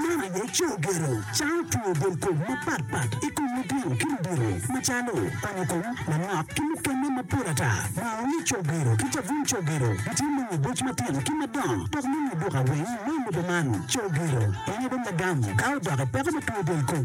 Meno aye coo gero cawo two del kom mapat pat i kom litino ki ludito macalo onyo kom, manok ki mukene mapol ata. Maa onyo coo gero ki cabun coo gero gitye me nyo boc matino ki madongo dok me nyo duka weng me lobo man. Coo gero konyo bene lagam ka odok i peko me two del kom.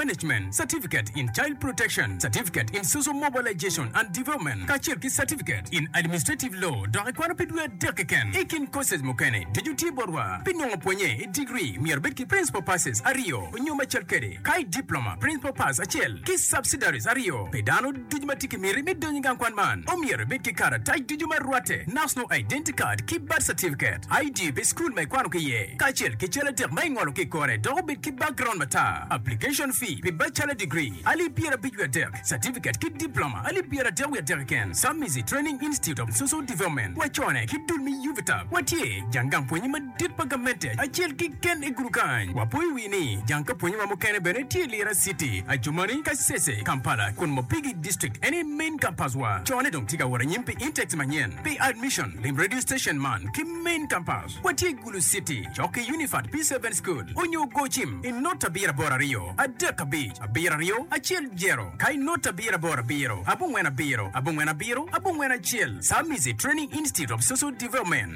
Management Certificate in Child Protection, Certificate in Social Mobilization and Development, kacel ki Certificate in Administrative Law, dok ikwano pi dwe adek keken. I kin courses mukene, ducu tye botwa. Pi nongo pwonye i degree, myero ibed ki Principal Passes aryo nyo macel kede, ka i Diploma, Principal Pass acel ki Subsidiaries aryo. Pi dano. Ducu ma tye ki miti me donyo i gang kwan man omyero ibed ki karatac ducu ma rwatte, National Identity Card ki Birth Certificate, ID pi cukul ma ikwano ki iye, kacel ki cal adek ma ingolo ki i kore dok obed ki background matar. Application fee pi Bachelor Degree, alip pyerabic wiye adek, Certificate ki Diploma, alip pyeradek wiye adek keken, Submizi Training Institute of Social Development, wacone ki dul me UVITA, watye jang gang pwonye madit. Tit pa gamente acel kiken i gudu kany. Wapo i wi ni jang ka pwonye ma mukene bene tye i Lira city, Adjumani, Kasese, Kampala, kun Mopigi district eni main campus wa. Co ne dong tye ka wot anyim pi intakes manyen pi admission. Lim radio station man ki main campus wa tye Gulu city cok ki Unifat P seven school onyo go cim i not abiro aboro aryo adek abic abiro aryo acel jero ka i not abiro aboro abiro abongwen abiro abongwen abiro abongwen acel Samizi training institute of social development.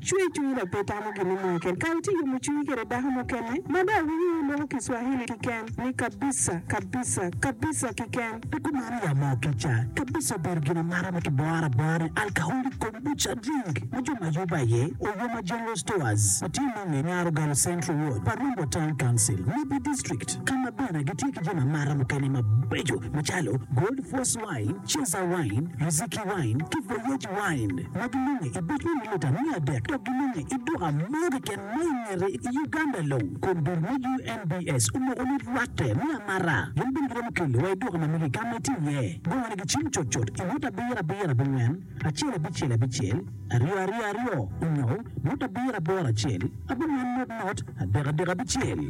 Cwer cwinyi dok pe itamo gin me moyo keri. Ka itye yomo cwinyi kwede dako mukene, ma dong awinyo ni loko ki Swahili kiken ni kabisa, kabisa, kabisa kiken. Pi kumeno ya mo kica. Kabisa obedo gin amata ma kiboro abora ni Alcoholic Kombucha Drink ma jo ma Yuba aye Oyoma General Stores ma tye nonge i Nyar Ogal Central Ward pa Rumbo Town Council, Nibi District, ka ma bene gitye ki jami amata mukene mabeco macalo Gold Force, Wine, Cheza Wine, Muziki Wine, ki Voyage Wine, ma gilunge i bot me militan me adek dok gilunge i duka mo keken ma i ngete i Uganda long. Kun dul me UNBS omoko ni rwatte me amara gin bene giromo kelo wa i duka ma magi ka ma itye iye. Bongo ni gicim cut cut i ngut abiro abiro abongwen acel abicel abicel aryo aryo aryo onyo ngut abiro aboro acel abongwen ngut ngut adek adek abicel.